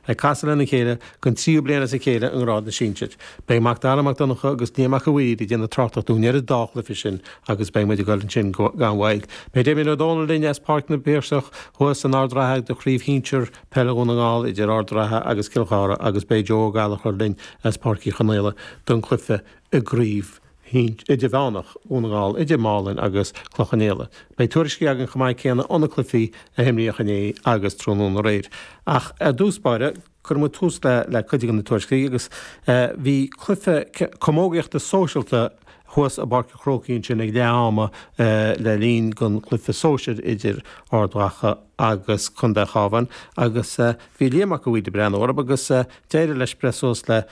Ag casadh lena chéile den tríú bliain as a chéile i ngrád na sinsir. Beidh Mac Dara Mac Donncha agus Liam Mac a' Mhaoir ag déanamh tráchtaireacht dúinn ar an dá chluife sin agus beidh muid ag dul ansin gan mhoill. Beidh Damien Ó Dónaill linn as Páirc na bPiarsach thuas in Ard an Rátha do chraobh shinsir peile Dhún na nGall idir Ard an Rátha agus Cill Chartha agus beidh Joe Ó Gallachóir linn as Páirc Uí Chonghaile don cluife i gcraobh idirmheánach Dhún na nGall idir Málainn agus Cloich Cheann Fhaola. Beidh tuairiscí againn chomh maith céanna óna cluichí a himríodh inné agus tráthnóna aréir. Ach ar dtús báire, cuirfidh muid tús le le cuid de na tuairiscí agus bhí cluiche camógaíochta sóisialta thuas i bPáirc an Chrócaigh ansin ag leath ama le linn don chluiche sóisir idir Ard Mhacha agus Contae an Chabháin agus bhí Liam Mac a' Mhaoir ag breathnú orthu agus d'éirigh leis breith suas le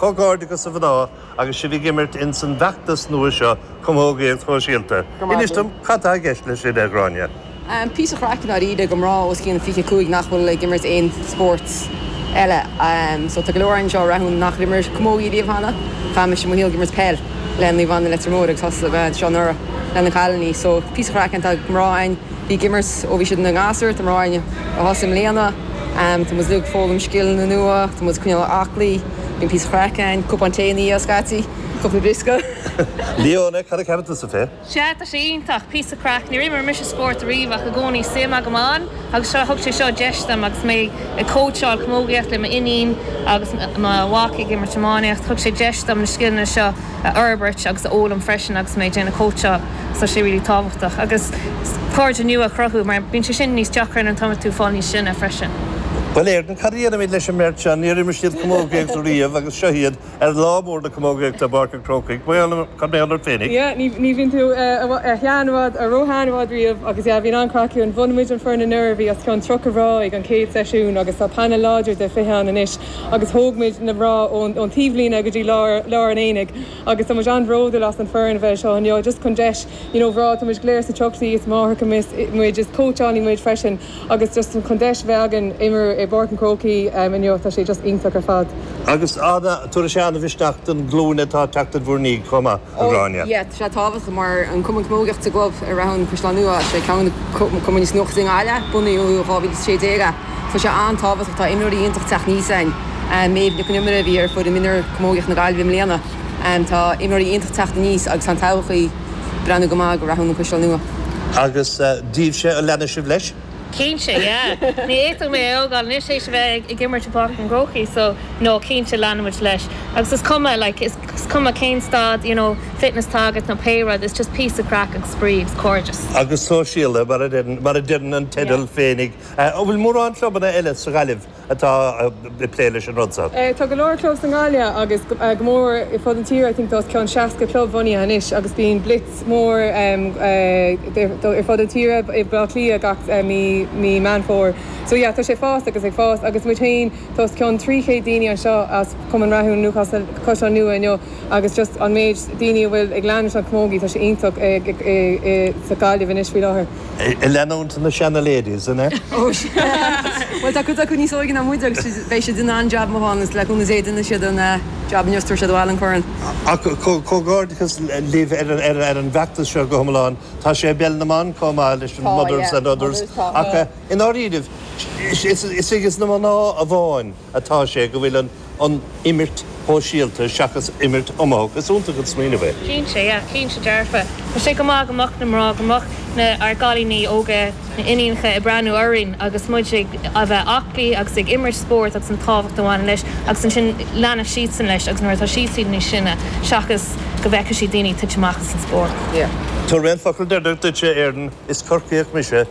Comhghairdeachas a mhná agus sibh ag imirt ins an bhfeachtas nua seo Camógaíocht Shóisialta. Inis dom, cad tá i gceist leis sin, a Ghráinne? Píosa craic ndáiríre do mná os cionn 25 nach bhfuil ag imirt aon spórt eile. So tá go leor anseo a rachaidh nach d'imir camógaí riamh cheana. Chaith mise mo shaol ag imirt peil le Naomh Anna Leitir Móir agus thosaigh mé anseo anuraidh le na cailiní. So píosa craic ann, tá mná ann. Bhí ag imirt ó bhí siad ina ngasúir, tá mná ann a thosaigh i mbliana. Tá muid uilig ag foghlaim scileanna nua, tá muid ag coinneáil aclaí, bíonn píosa craic ann, cupán tae ina dhiaidh scaití, cúpla briosca. Leanne, cad a cheapann tusa faoi? Sea, tá sé iontach, píosa craic. Níor imir mise spórt ariamh ach i gcónaí suim agam ann agus seo, thug sé seo deis dom agus mé ag cóitseáil camógaíocht le m'iníon agus mo mhac ag imirt iománaíocht, thug sé deis dom na scileanna seo. a fhorbairt agus a fhoghlaim freisin agus mé ag déanamh cóitseáil so sé really tábhachtach agus cairde nua a chruthú mar bíonn sé sin níos deacra an t-am atá tú fáil níos sine freisin. Bhuel Éirinn, cad a dhéanfaimid leis an mbeirt seo? Níor imir siad camógaíocht riamh agus seo iad ar lá mór na camógaíochta i bPáirc an Chrócaigh. Cad mar gheall ort féinig? Yeah, ní, ní bhíonn tú a shean i bhfad, a ró-shean i bhfad riamh agus yeah, bíonn an-chraic ann. Bhunaigh muid an foireann anuraidh, bhí os cionn tríocha mná ag an chéad seisiún agus tá panel láidir de fiche ann anois. agus thóg muid na mná ón taobhlíne go dtí lár an aonaigh agus tá muid an-bhródúil as an foireann a bheith anseo inniu just chun deis you know bhreá tá muid go léir sna tríochaidí is máithreacha muid is cóitseálaí muid freisin agus just chun deis a bheith againn imirt i bPáirc an Chrócaigh inniu tá sé just iontach ar fad. Agus tabharfaidh sé an-mhisneach don glúin atá ag teacht in bhur ndiaidh chomh maith. a Ghráinne. yeah, tá sé tábhachtach mar an cumann camógaíocht sa gclub Rathún An Caisleán Nua, sé ceann de na cumainn is nua i gContae na Gaillimhe, bunaíodh i 2016 é. Tá sé an-tábhachtach, tá imreoirí iontach teacht aníos a'inn, Méabh Nic an Iomaire a bhí ar foireann mionúr camógaíocht na Gaillimhe i mbliana, tá imreoirí iontach teacht aníos agus tá an todhchaí breathnú go maith do Rathún An Caisleán Nua. Agus daoibhse, an leanfaidh sibh leis? Cinnte, yeah. Ní fhéadfadh mé é a fhágáil anois théis a bheith ag imirt i bPáirc an Chrócaigh so no, cinnte, leanfaimid leis. Agus is cuma, like, is cuma cén staid, you know, fitness atá agat nó pé rud, it's just píosa craic agus spraoi agus cairdeas. Agus sóisialta, mar a deireann an teideal féinig. An bhfuil mórán clubanna eile sa Ghaillimh atá ag plé leis an rud so. Tá go leor club sa nGaillimh agus go mór ar fud an tíre, I think tá os cionn 60 club bunaithe anois agus bíonn blitz mór ar fud an tíre i mBleá Cliath gach mí Meán Fómhair. So yeah tá sé ag fás agus ag fás agus muid féin tá os cionn 300 daoine anseo as Cumann Rathúin Newcastle Caisleán Nua inniu agus just an méid daoine a bhfuil ag leanúint an chamógaí tá sé iontach i sa Gaillimh anois faoi láthair. Ag leanúint na Seana-Ladies, an ea? Ó, sea. Bhuel, tá cuid acu níos óige ná muid agus beidh siad in ann jab maith a dhéanamh, le cúnamh Dé, déanfaidh siad an jab inniu is tabharfaidh siad abhaile an corn. Ach comhghairdeachas libh ar an bhfeachtas seo go hiomlán. Tá sé i bPeil na mBan chomh maith leis an Tá, Mothers yeah. and Others. Mothers, tá. Ach i ndáiríribh, is ag na mná amháin. atá sé go bhfuil an an imirt shóisialta seachas imirt iomaitheach. Is iontach an smaoineamh é. Cinnte, yeah, cinnte dearfa. Tá sé go maith go mbeadh na mná, go mbeadh na, ár gcailíní óga, na iníonacha ag breathnú orainn agus muid ag a bheith aclaí agus ag imirt spóirt agus an tábhacht a bhaineann leis agus ansin leanfaidh siadsan leis agus nuair atá siadsan níos sine seachas go bhfeicfidh siad daoine ag titim amach as an spórt, yeah. Tabharfaidh mé an focal deireanach duitse a Fhearn, is Corcaíoch mise.